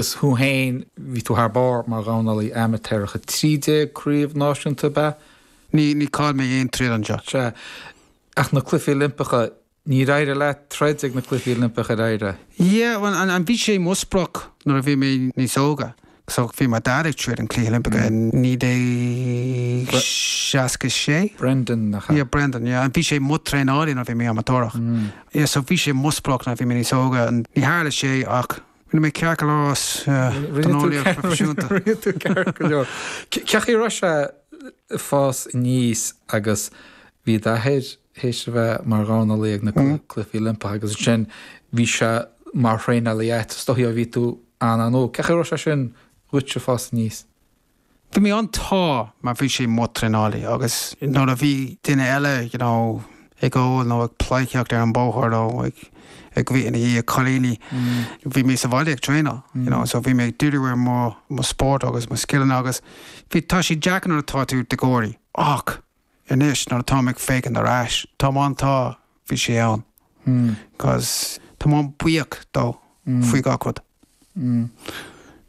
Is thú fhéin, bhí tú thar barr mar dhornálaí amaitéarach, 13 craobh náisiúnta, ab ea? Ní, ní chaill mé aon troid anseo. Sea, ach na cluichí Oilimpeacha, níor éirigh leat troid ag na cluichí Oilimpeacha, ar éirigh? Yeah, bhuel, an, an, bhí sé mo sprioc nuair a bhí mé níos óga, so, bhí mo Dhaid ag troid in Cluichí Oilimpeacha i naoi déag seasca sé. Brendan, nach ea? Yeah, Brendan, yeah, an, bhí sé mo traenálaí nuair a bhí mé amaitéarach. Yeah, so bhí sé mo sprioc nuair a bhí mé níos óga, ní tharla sé ach, Rinne mé ceart go leor as dornálaíocht phroifisiúnta. Rinne tú ceart go leor. Cén chaoi a raibh sé ag fás aníos agus bhí d'athair théis a bheith mar dhornálaí ag na cluichí Oilimpeacha agus ansin bhí sé mar thraenálaí a'd, is dóigh bhí tú an-óg. Cén chaoi a raibh sé sin dhuit ag fás aníos? Bhí mé an-sásta, mar bhí sé mo traenálaí agus nuair a bhí duine eile, you know, ag ól nó ag pleidhcíocht ar an bóthar nó ag, ag, bhí i ndiaidh cailíní, bhí mé sa bhaile ag traenáil, you know, so bhí mé ag diriú ar mo, mo spórt agus mo scileanna agus bhí, tá sé deacair nuair atá tú i do dhéagóir. Ach anois nuair atáim ag féachaint ar ais, tá mé an-sásta bhí sé ann agus tá mé buíoch dó faoi gach rud.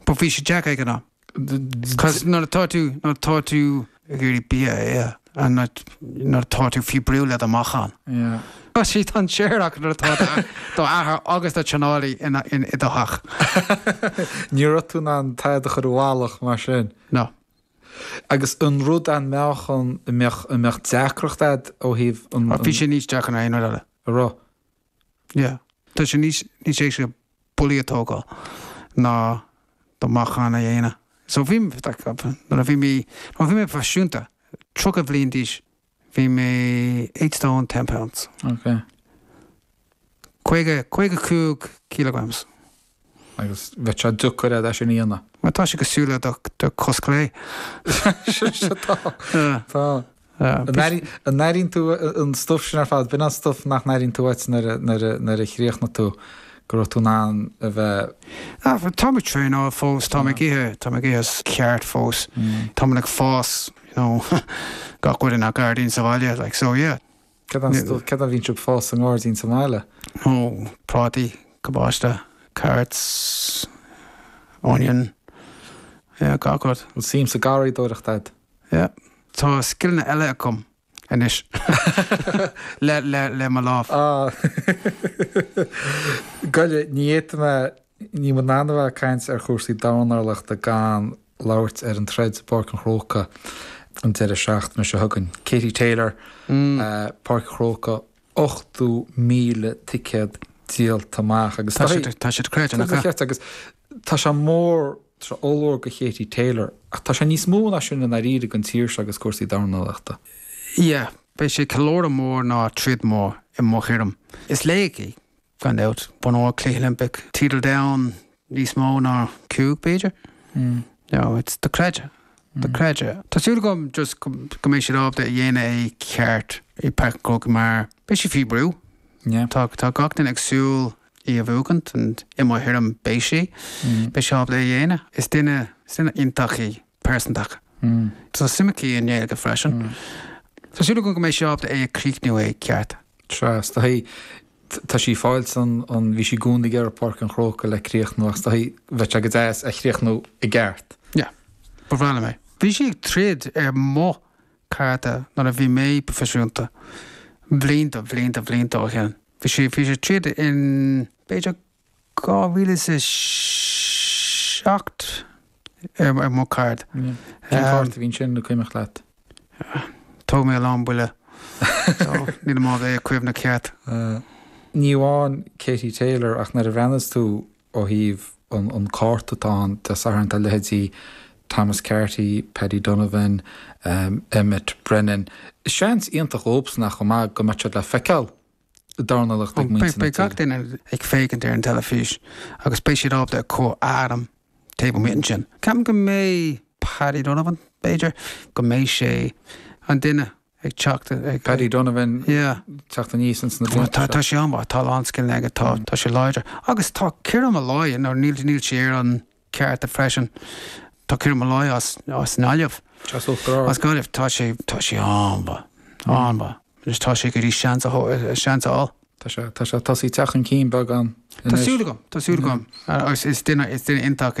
But bhí sé deacair ag an am. Cos nuair atá tú, nuair atá tú ag iarraidh bia a ithe, and nuair, nuair atá tú faoi brú le do mheáchan. Yeah. Cos sé, tá sé fíor, ach nuair atá do, do athair agus do traenálaí in, in, i do theach. Ní raibh tú in ann tada a chur i bhfalach mar sin. No. Agus an rud an mbeadh an, an mbeadh, an mbeadh deacracht a'd ó thaobh an, an. Bhí sé níos deacra ná aon rud eile. An raibh? Yeah. Tá sé níos níos éasca buillí a tógáil ná do mheáchan a dhéanamh. So bhí like nuair a bhí mé nuair a bhí mé proifisiúnta, tríocha bhliain d'aois, bhí mé eight stone ten pounds. Okay. caoga caoga a cúig kg. Agus bheadh sé deacair a'd é sin a dhéanamh. Mar tá sé cosúil le do chos clé. Sin sé, tá, tá. An n-airíonn tú an stuff sin ar fad? B'in an stuff nach n-airíonn tú uait nuair a chríochnaigh tú, go raibh tú in ann a bheith. Tá mé ag traenáil fós, tá mé ag ithe, tá mé ag ithe ceart fós. Tá mé ag fás, you know, gach rud i mo gairdín sa bhaile, like, so yeah. Céard, céard a bhíonn tú ag fás sa ngairdín sa mbaile? Ó, prátaí, cabáiste, carrots, onion, yeah, gach rud. An-suim sa garraíodóireacht agat? Yeah. Tá scileanna eile agam anois le, le, le mo lámh. Ah. Go leor, ní fhéadfaidh mé Níl muid in ann a bheith ag caint ar chúrsaí dornálaíochta gan labhairt ar an troid i bPáirc an Chrócaigh an deireadh seachtaine seo chugainn. Katie Taylor, Páirc an Chrócaigh, 80,000 ticéad díolta amach agus tá sé dochreidte. Agus tá sé mór, tá sé ollmhór do Katie Taylor ach tá sé níos mó ná sin i ndáiríre don tír seo agus cúrsaí dornálaíochta. Yeah, beidh sé ceiliúradh mór ná troid mór i mo thuairim. Is laoch í, gan dabht. Bonn óir Cluichí Oilimpeacha, teideal domhain níos mó ná cúig, b'fhéidir? No, it's dochreidte. Dochreidte. Tá súil agam just go mbeidh siad ábalta a dhéanamh é ceart i Páirc an Chrócaigh mar beidh sí faoi bhrú. Tá gach duine ag súil í a bhuachaint and i mo thuairim beidh sí. Beidh sí ábalta é a dhéanamh. Is duine iontach í, pearsantach. Tá suim aici i nGaeilge freisin. Tá súil agam go mbeidh sí ábalta é a chríochnú é ceart. Tras, tá sí. Tá sí ag fáil seans ann, bhí sí i gcónaí ag iarraidh Páirc an Chrócaigh le críochnú ach tá, bheadh sé go deas a chríochnú i gceart. Yeah. Ba bhreá liom é. Bhí sí ag troid ar mo cárta nuair a bhí mé proifisiúnta. Blianta, blianta, blianta ó shin. Bhí sí, bhí sí ag troid in, b'fhéidir, 2007 ar mo card. Cén cárta a bhí ansin, an cuimhneach leat? Thóg mé a lán buillí, níl mo cuimhne ceart. Ní amháin Katie Taylor ach nuair a bhreathnaíos tú ó thaobh an cárta atá ann Dé Sathairn tá leithéidí Thomas Carty, Paddy Donovan, Emmet Brennan. Seans iontach dhóibhsan ach chomh maith go mbeidh siad le feiceáil. dornálaíocht ag muintir na tíre. Beidh gach duine ag féachaint ar an teilifís agus beidh siad ábalta cur ainm taobh amuigh ansin. Ceapaim go mbeidh Paddy Donovan, b'fhéidir, go mbeidh sé an duine ag teacht ag. Paddy Donovan teacht aníos ins na blianta seo. Tá sé an-mhaith, tá a lán scileanna aige, tá sé láidir. Agus tá Kieran Molloy, nó níl sé ar an. cárta freisin. Tá Kieran Molloy as Gaillimh. As Uachtar Ard. As Gaillimh. Tá sé, tá sé an-mhaith. An-mhaith. Anois tá sé ag iarraidh seans a thó- seans a fháil. Tá sé, tá sé tosaigh teacht chun cinn beagán anois. Tá súil agam, tá súil agam. Agus is duine, is duine iontach é.